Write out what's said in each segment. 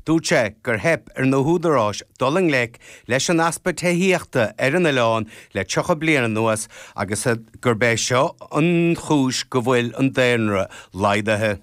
Dúirt sé gur theip ar na húdaráis dul i ngleic leis an easpa tithíochta ar an oileán le 30 bliain anuas agus gurb é seo an chúis go bhfuil an daonra laghdaithe.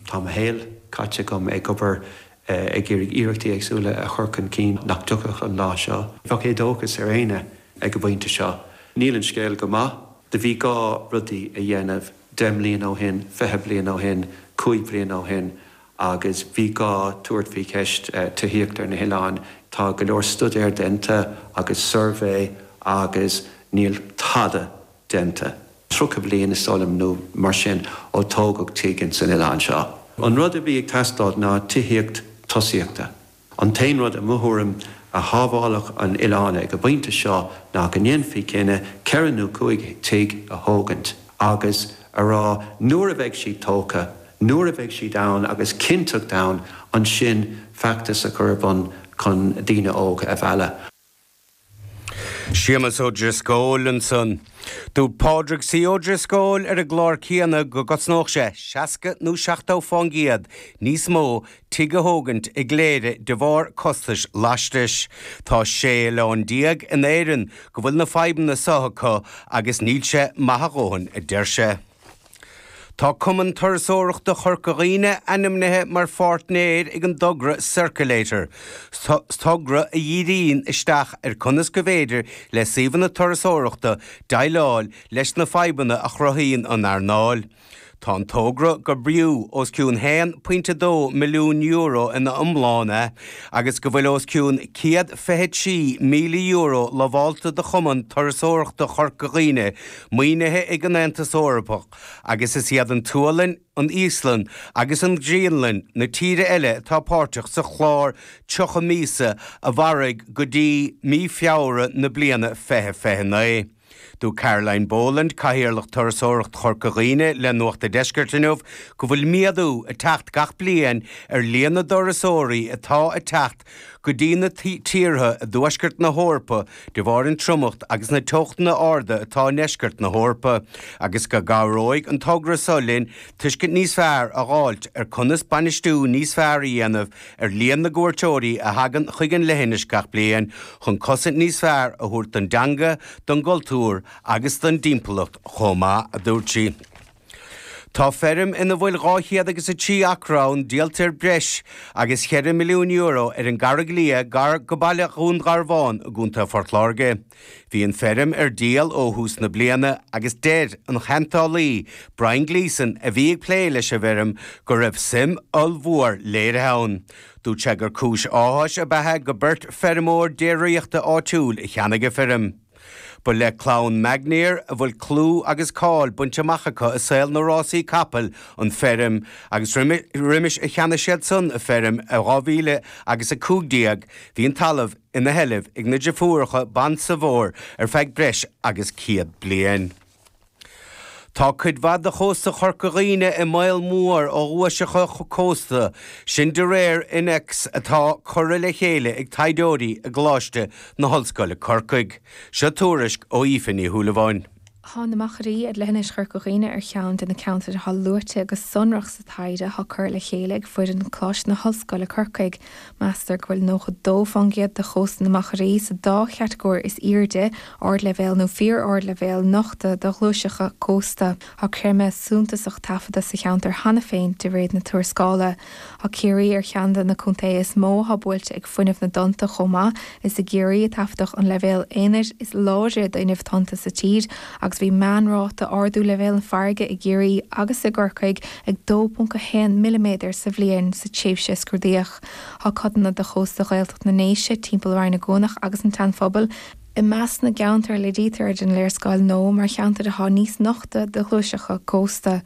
Tá mo shaol caite agam ag obair ag iarraidh iarrachtaí éagsúla a chur chun cinn nach dtiocfadh an lá seo. Bheadh éadóchas ar éinne ag an bpointe seo. Níl an scéal go maith. Do bhí gá rudaí a dhéanamh deich mbliana ó shin, fiche bliain ó shin, cúig bhliain ó shin agus bhí gá tabhairt faoi cheist tithíochta ar na hoileáin. Tá go leor stuidéar déanta agus suirbhé agus níl tada déanta, 30 bliain is dóigh liom nó mar sin ó tógadh tigh insan oileán seo. An rud a bhí ag teastáil ná tithíocht tosaíochta. An t-aon rud, i mo thuairim, a shábhálfadh an t-oileán ag an bpointe seo ná go ndéanfaí cinneadh ceithre nó cúig tigh a thógaint agus a rá 'nuair a bheidh siad tógtha, nuair a bheidh siad ann agus cinnteacht ann, ansin feachtas a chur ar bun chun daoine óga a mhealladh'. Séamus Ó Drisceoil ansan. Dúirt Pádraig C. Ó Drisceoil ar an gclár céanna go gcosnódh sé 60 nó 70 fán gcéad níos mó tigh a thógaint i gCléire de bharr costais lastais. Tá sé oileán déag in Éirinn go bhfuil na fadhbanna seo acu agus níl sé maith a dhóthain a deir sé. Tá Cumann Turasóireachta Chorca Dhuibhne ainmnithe mar pháirtnéir ag an dtogra Circulator, togra a dhíríonn isteach ar conas go bhféidir le suíomhanna turasóireachta déileáil leis na fadhbanna a chruthaíonn an earnáil. Tá an togra gur fiú os cionn €1.2 milliún euro ina iomláine agus go bhfuil os cionn €126,000 lamhálta do Chumann Turasóireachta Chorca Dhuibhne Maoinithe ag an Aontas Eorpach agus is iad an tSualainn, an Íoslainn agus an Ghraonlainn na tíortha eile atá páirteach sa chlár 30 míosa a mhairfidh go dtí mí Feabhra na bliana 2029. Dúirt Caroline Boland, Cathaoirleach Turasóireacht Chorca Dhuibhne le Nuacht a Deiscirt inniu go bhfuil méadú ag teacht gach bliain ar líon na dturasóirí atá ag teacht go dtí na tíortha i dtuaisceart na hEorpa de bharr an triomacht agus na teochtanna arda atá i ndeisceart na hEorpa agus go gcabhróidh an togra seo linn tuiscint níos fearr a dh'fháilt ar conas bainistiú níos fearr a dhéanamh ar líon na gcuairteoirí a thagann chuig an leithinis gach bliain chun cosaint níos fearr a thabhairt don dteanga, don gcultúr agus don dtimpeallacht chomh maith, a dúirt sí. Tá feirm ina bhfuil dhá chéad agus a trí acra ann díolta ar breis agus cheithre milliún euro ar an gCarraig Liath gar go baile Dhún Garbhán i gContae Phort Láirge. Bhí an feirm ar díol ó thús na bliana agus deir an cheantálaí Brian Gleeson a bhí ag plé leis an bhfeirm go raibh suim ollmhór léirithe ann. Dúirt sé gur cúis áthais ab ea go beirt feirmeoir déiríochta áitiúil a cheannaigh an feirm. Ba le clann Magnier a bhfuil clú agus cáil bainte amach acu i saol na rásaí capaill, an feirm, agus roimis a cheannaigh siadsan an feirm i 2015 bhí an talamh ina sheilbh ag na deirfiúracha Bon Sauveur ar feadh breis agus 100 bliain. Tá cuid mhaith de chósta Chorca Dhuibhne i mbaol mór ó ghuaiseacha cósta, sin de réir innéacs atá curtha le chéile ag taighdeoirí i gColáiste na hOllscoile Corcaigh. Seo tuairisc ó Aoife Ní Shúilleabháin. Tá na Machairí ar leithinis Chorca Dhuibhne ar cheann de na ceantair atá luaite go sonrach sa taighde atá curtha le chéile ag foireann Choláiste na hOllscoile Corcaigh Meastar go bhfuil 92% de chósta na Machairí sa dá chatagóir is airde, ardleibhéal nó fíor-ardleibhéal, nochta do ghuaiseacha cósta. Tá creimeadh suntasach taifeadta sa cheantar cheana féin de réir na tuarascála. Tá Ciarraí ar cheann de na contaetha is mó atá buailte ag fuinneamh na dtonnta chomh maith, Is i gCiarraí a taifeadadh an leibhéal aonair is láidre d'fhuinneamh tonnta sa tír agus bhí meánráta ardú leibhéal na farraige i gCiarraí agus i gCorcaigh ag 2.1 milliméadar sa bhliain sa tréimhse a scrúdaíodh. Tá codanna de chósta Ghaeltacht na nDéise, timpeall Rinn Ua gCuanach agus an tSeanphobail, i measc na gceantar a léirítear ar an léarscáil nua mar cheantair atá níos nochta do ghuaiseacha cósta.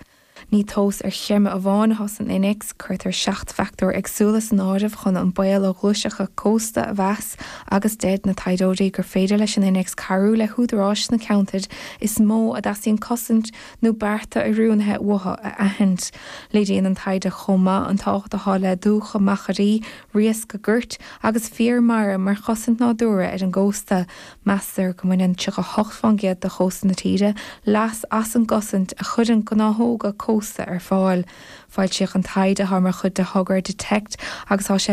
Ní tomhas ar chreimeadh amháin atá san innéacs, cuirtear seacht bhfactóir éagsúla san áireamh chun an baol ó ghuaiseacha cósta a mheas agus deir na taighdeoirí gur féidir leis an innéacs cabhrú le húdaráis na ceantair is mó a dteastaíonn cosaint nó bearta oiriúnaithe uathu a aithint. Léiríonn an taighde chomh maith an tábhacht atá le dumhcha, machairí, riasca goirt agus féar mara mar chosaint nádúrtha ar an gcósta. Meastar go mbaineann 38% de chósta na tíre leas as an gcosaint a chuireann gnáthóga cósta ar fáil. Foilsíodh an taighde mar chuid de thogra Detect agus tá sé